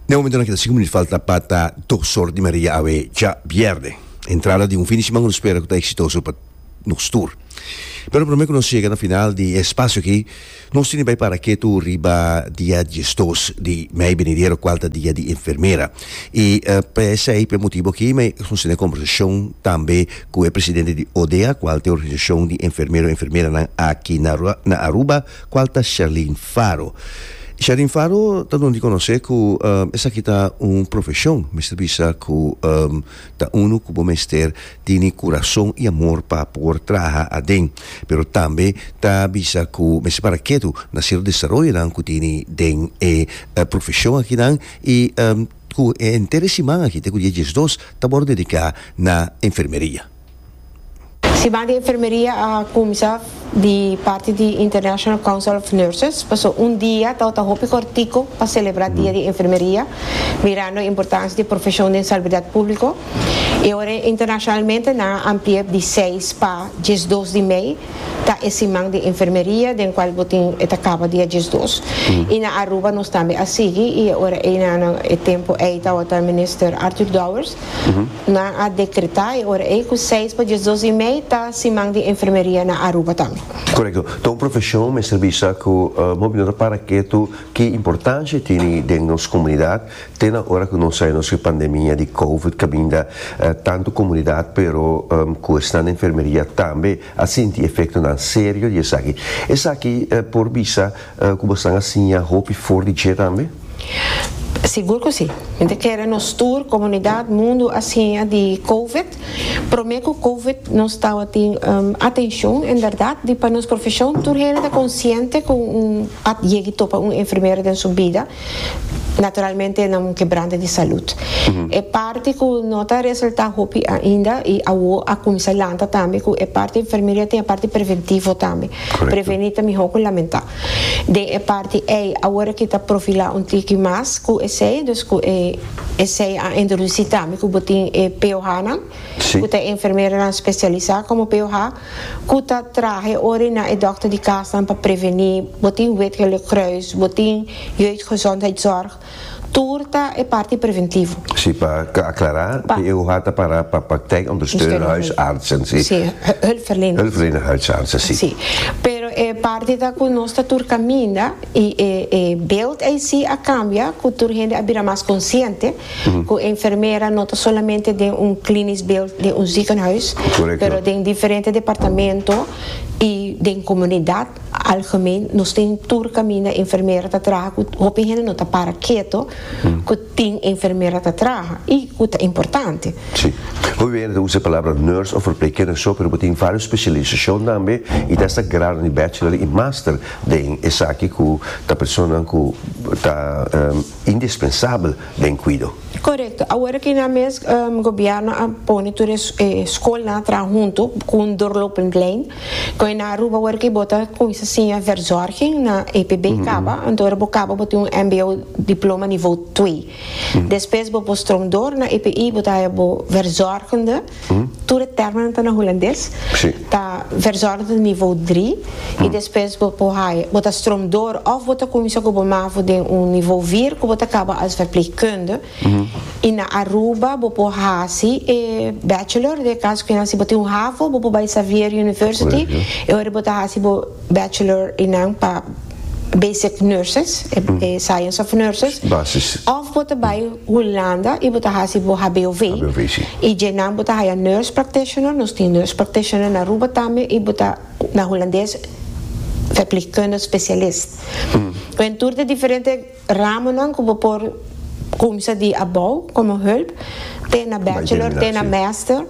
Den momentonan keda sinku minut falta pa ta dos or di media awe djabièrnè. Entrada di un fin di siman ku nos spera ku ta eksitoso pa nos tur. Pero promé ku nos yega na final di e spasio aki, nos tin di bai para ketu riba dia diesdos di mei benidero kual ta dia di enfermera. I p'esei, p'e motibu aki mi nos tene kombersashon tambe ku e presidente di ODEA, kual ta e organisashon di enfermero i enfermeranan aki na Aruba, Cual ta Sherlyn Faro? Sherlyn Faro ta don di conoce cu esaki ta un profesion, mester bisa cu ta uno cu bo mester tini curason y amor pa por traha aden, pero tambe ta bisa cu mester para ketu na cierto desaroyonan cu tini den e profesion akinan y cu henter e siman aki te cu dia diesdos ta wor dedica na enfermeria. Siman di enfermeria a kumsa di parti di International Council of Nurses, pasobra un dia ta tabata hopi kortiko pa selebrá dia di enfermeria, mirando e importansia di e profeshon den salubridad públiko. I awor internashonalmente nan a ampli'é di seis pa diesdos di mei ta e siman di enfermeria den kual bo tin e ta kaba dia diesdos. I na Aruba nos tambe a sigui i ora ei na e tempu ei tabata Minister Arthur Dowers Nan a dekreta e ora ei ku seis pa diesdos i mei ta Siman di Enfermeria na Aruba tambe. Korekto. Ta un profeshon mester bisa ku bo bin no ta para ketu ki importansha e tini den nos komunidat te na ora ku nos a nos e pandemia di covid kaminda tantu komunidat pero ku esnan di enfermeria tambe a sinti efektonan serio di esaki. Esaki por bisa Cu bo stan a siña hopi for di dje tambe? Sigur cu si. Mi ta kere nos tur comunidad, mundo a siña di covid. Prome cu covid nos tawatin atencion en berdad di pa nos profesion tur hende ta conciente cu un a yegi topa un enfermera den su bida Naturalmente nan kebranta di salud. E parti ku no ta resultá hopi ainda i awo a kuminsá lanta tambe ku e parti enfermeria tin e parti preventivo tambe. Prevení ta mihó ku lamentá. Den e parti ei awor kita profilá un tiki mas ku esei dus ku e esei a introdusí tambe ku bo tin e POHnan ku ta e enfermeranan spesialisá komo POH. ku ta trahe ora i na e dòkter di kasnan pa prevení, bo tin Wit Gele Kruis, bo tin Jeugdgezondheidszorg, tur ta e parti preventivo. Sí, pa aklará, PEUH ta pará pa Praktijkondersteunerhuisartsen, sí. Sí, hulpverleners. Hulpverlenerhuisartsen, sí. Sí, pero e parti ta ku nos ta tur kaminda i e beeld ei sí a kambia ku tur hende a bira mas konsiente. Ku enfermera no ta solamente den un klinisch beeld den un ziekenhuis, pero den diferente departamento i den komunidat algemeen. Nos tin tur kaminda enfermera ta traha ku hopi hende no ta para keto ku tin enfermera ta traha i ku ta importante. Si. Hopi bey hende ta usa e palabra nurse of verpleegkundige so, pero bo tin varios specialisashon tambe i ta hasta grado di bachelor i master den esaki ku ta personanan ku ta. indispensabel den cuido. Corecto. Awor aki nan mes Gobierno a pone tur e scolnan a traha hunto cu un doorlopingplein. Con e nan Aruba awor aki bo ta cuminsa siña verzorging na EPB caba. Anto ora bo caba bo tin un mbo diploma nivo twee. Despues bo por stroom door na EPI bo ta haya bo verzorgende. Tur e tèrminonan ta na hulandes. Sí. Ta verzordo ta nivo dri i despues bo por haya, bo ta stromdor òf bo ta kuminsá ku bo mavo den un nivo vir ku bo ta kaba as verpleegkunde i na Aruba bo por hasi e bachelor den e kaso ku nan si bo tin un havo bo por bai Xavier University e ora bo ta hasi bo bachelor i nan pa basic nurses, e science of nurses, Basis. of bo ta bai Hulanda y bo ta haci bo HBOV, HBOV, si. y dje nan bo ta haya nurse practitioner, nos tin nurse practitioner na Aruba tambe y bo ta na Hulandes verpleegkundig specialist. Wen tur de diferente. Ramonan ku bo por kumsa di abou komo hulp te na bachelor te na mester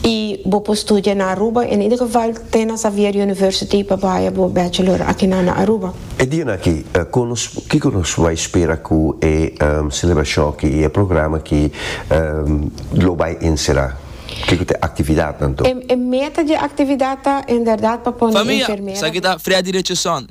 i bo por studia na Aruba en ieder geval te na Xavier University pa baya bo bachelor akinan na Aruba. E dianan aki, kiko nos bai spera ku e selebrashon aki i e programa aki lo bai ensera? Kiko ta e aktividatnan to? E meta di e aktividat ta en bèrdat pa pone enfermera. Famia, esaki ta Freddy Richardson,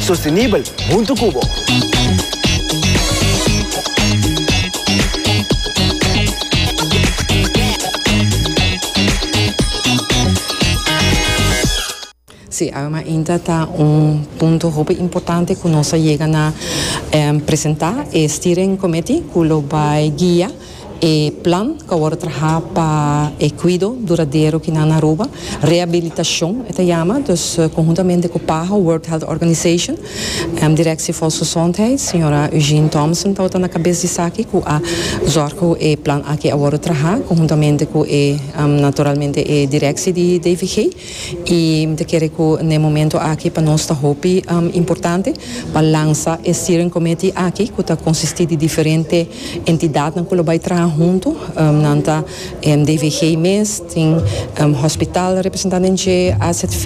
Sostenibel huntu cu bo. Sí, Aromainta ta un punto hopi importante cu nos a yega na presenta e Steering Committee cu lo bay guia. E plan cu awor ta traha pa e cuido duradero cu nan na Aruba, rehabilitacion e ta yama, dus conhuntamente cu PAHO, World Health Organization, Directie Volksgezondheid, señora Eugene Thompson tabata na cabes di esaki cu a zorg cu e plan aki a worde traha conhuntamente cu e naturalmente e directie di DVG. I mi ta kere ku na e momento aki pa nos ta hopi importante pa lansa e steering committee aki ku ta konsistí di diferente entidatnan ku lo bai traha huntu. Nan ta DVG mes, tin hospital representá den dje, AZV,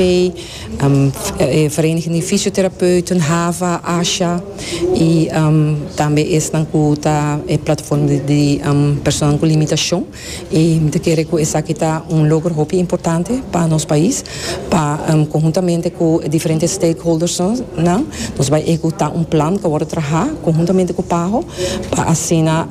e Vereniging di Fisioterapeuten, hava, asha i tambe esnan ku ta e plataforma di personanan ku limitashon. I mi ta kere ku esaki ta un logro hopi importante pa nos pais, pa konhuntamente ku e diferente stakeholdersnan nos bai ehekutá un plan ku a wòrdu trahá konhuntamente ku Paho pa asina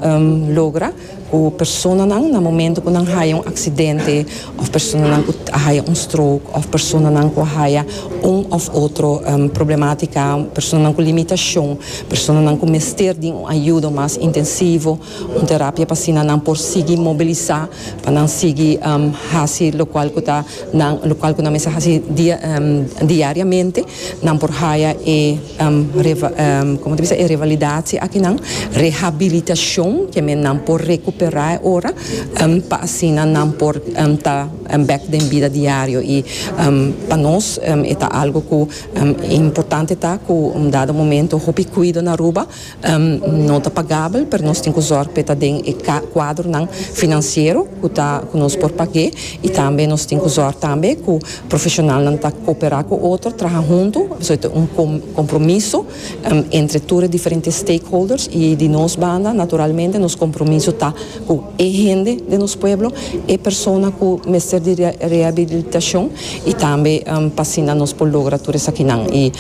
logra ku personanan na momentu ku nan haya un aksidente òf personanan ku a haya un stroke òf personanan ku a haya un òf otro problematika, personanan ku limitashon, personanan ku mester di un ayudo mas intensivo. Un terapia pa asina nan por sigui mobilisá pa nan sigui hasi lokual ku ta nan lokual ku nan mester hasi dia diariamente. Nan por haya e kòmo ta bisa e revalidatie akinan, rehabilitashon, ke men nan por rekuperá e ora pa asina nan por ta bèk den bida diario. I pa nos e ta algu ku importante ta ku un dado momento hopi kuido na Aruba. No ta pagabel, pero nos tin ku zòrg pa e ta den e kuadronan finansiero ku ta ku nos por pag'é i tambe nos tin ku zòrg tambe ku profeshonalnan ta koperá ku otro, traha huntu, pasobra ta un kompromiso entre tur e diferente stakeholders i di nos banda naturalmente nos kompromiso ta ku e hende den nos pueblo, e persona ku mester di rehabilitashon y tambe pa asina nos por logra tur esakinan y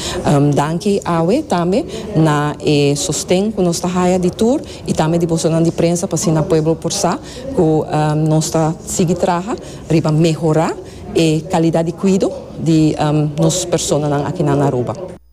danki awe tambe na e sosten cu nos ta haya di tur y tambe di bosonan di prensa pa asina pueblo por sa cu nos ta sigui traha riba mehora e calidad di cuido di nos personanan akinan na Aruba.